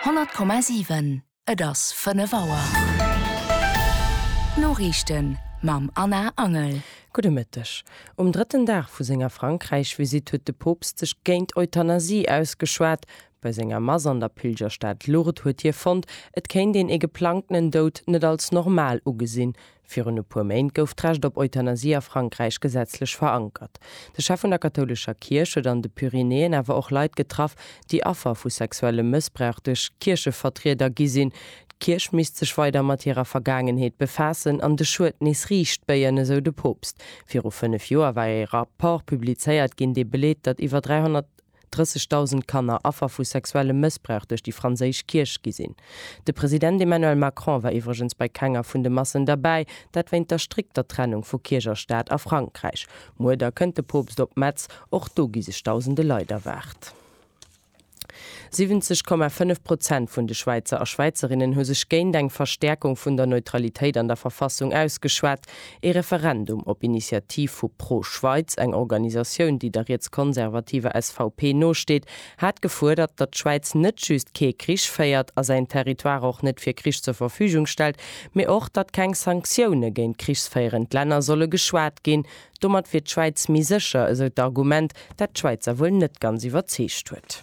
100,7 Et ass 5 Auer. D'Noriichten mam Anna Angel. Gudde Mëtteg. Um drëtten Dag vu senger Frankräich-Visitt huet de Poopst sech géint Euthanasie ausgeschwat. Bei senger Mass an der Pilgerstad Lourdes huet hie fonnt, et kéint een ee geplangtenen Doud net als normal ugesinn. Virun e puer Méint gouf d'Recht op Euthanasie a Frankräich gesetzlech verankert. De Chef vun der kathoulescher Kierch huet an de Pyrenäen awer och Leit getraff, déi Affer vu sexuellem Mëssbrauch duerch Kierchevertrieder gi sinn. D'Kierch misst sech weider mat hirer Vergaangenheet befaassen an de Schued nees riicht béien, esou de Poopst. Viru fënnef Joer war ee Rapport publizéiert ginn, dee beleet, datt iwwer 300. 30.000 Kanner Affer vu sexuellem Mëssbrauch duerch déi franséisch Kierch gi sinn. De President Emmanuel Macron war iwwregens bei kenger vun de Massen derbäi, dat wéint der strikter Trennung vu Kierch a Staat a Frankräich. Muer da kënnt de Poopst op Metz, och do gi sech dausende Leit erwaart. 70,5 Prozent vun de Schwäizer a Schwäizerinnen hu sech géint eng Verstäerkung vun der Neutralitéit an der Verfassung ausgeschwat. Ee Referendum op Initiativ vu ProSchweiz, eng Organisatioun, déi der rietskonservativer SVP nosteet, hat gefuerdert, datt d'Schwäiz net just kee Krich féiert a säin Territoire och net fir Krich zur Verfügung stellt, mee och, datt keng Sanktioune géint krichsféierend Länner solle geschwat ginn. Domat wier d'Schwäiz méi sécher, esou d'Argument, dat d'Schwäizer wuel net ganz iwwerzeegt huet.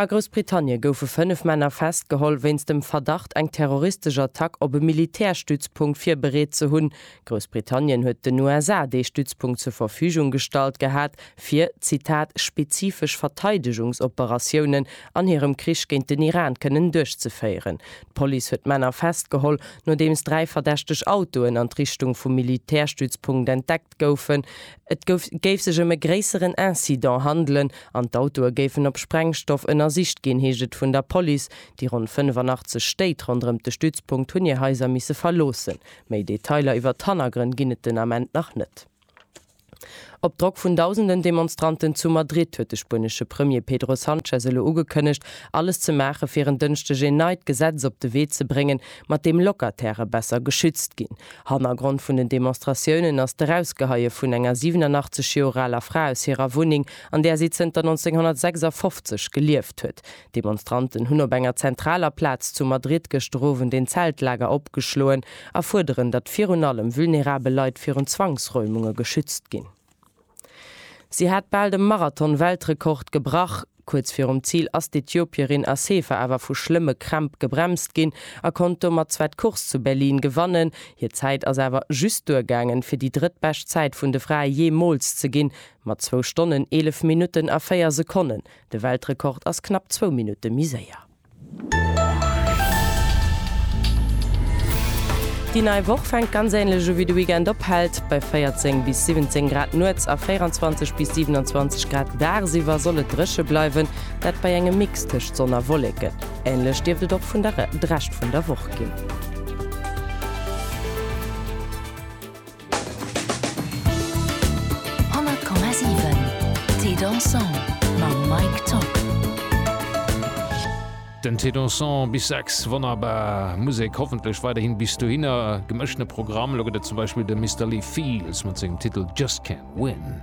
A Groussbritannie goufe fënnef Männer festgeholl wéinst dem Verdacht, eng terroristesch Attack op e Militärstützpunkt virbereet ze hunn. Groussbritannien huet den USA dee Stützpunkt zur Verfügung gestallt gehat, fir, Zitat, spezifesch Verteidegungsoperatiounen an hirem Krich géint den Iran kënnen duerchzeféieren. D'Police huet d'Männer festgeholl, nodeems dräi verdächteg Autoen an d'Richtung vum Militärstützpunkt entdeckt goufen, et géif sech ëm e gréisseren Incident handelen an d'Autoe géifen op Sprengstoff ënnersicht ginn, heescht et vun der Police. Déi ronn 85 Stéit ronderëm de Stützpunkt hunn hir Haiser misse verloossen. Méi Detailer iwwer d'Hannergrënn ginn et den Ament nach net. Op Drock vun dausenden Demonstranten zu Madrid huet de spuenesche Premier Pedro Sanchez elo ugekënnegt, alles ze maache fir en Dënschdeg een neit Gesetz op de Wee ze bréngen, mat deem Locatairë besser geschützt ginn. Hannergrond vun den Demonstratiounen ass d'Erausgeheie vun enger 87 Joer aler Fra aus hirer Wunneng, an där si zënter 1956 gelieft huet. D'Demonstranten hunn op enger zentraler Plaz zu Madrid gëschter Owend een Zeltlager opgeschloen a fuerderen, datt virun allem vulnerabel Leit virun Zwangsräumunge geschützt ginn. Si hat bal de Marathon-Weltrekord gebrach. Kuerz virum Zil ass d'Ethiopierin Assefa awer vu schlëmme Krämp gebremst ginn a konnt domat zwar d'Course zu Berlin gewannen. Hir Zäit ass awer just duergaangen, fir déi drëttbescht Zäit vun de Frae jeemools ze ginn, mat zwou Stonnen, eelef Minutten a véier Sekonnen. De Weltrekord ass knapp zwou Minutte méi séier. Déi nei Woch fänkt ganz ähnlech u wéi de Weekend ophält. Bei 14 bis 17 Grad nuets a 24 bis 27 Grad dagsiwwer soll et dréche bleiwen, dat bei engem Mix tëscht Sonn a Wolleken. Ähnlech dierft et och vun der de Rescht vun der Woch ginn. 100,7 Thé dansant mam Mike Top. Den Thé dansant bis 6, wonnerbar Musek, hoffentlech weiderhin bis dohinner. Gemëschtene Programm, elo gëtt et zum Beispill de Mister Lee Fields mat sengem Titel Just Can't Win.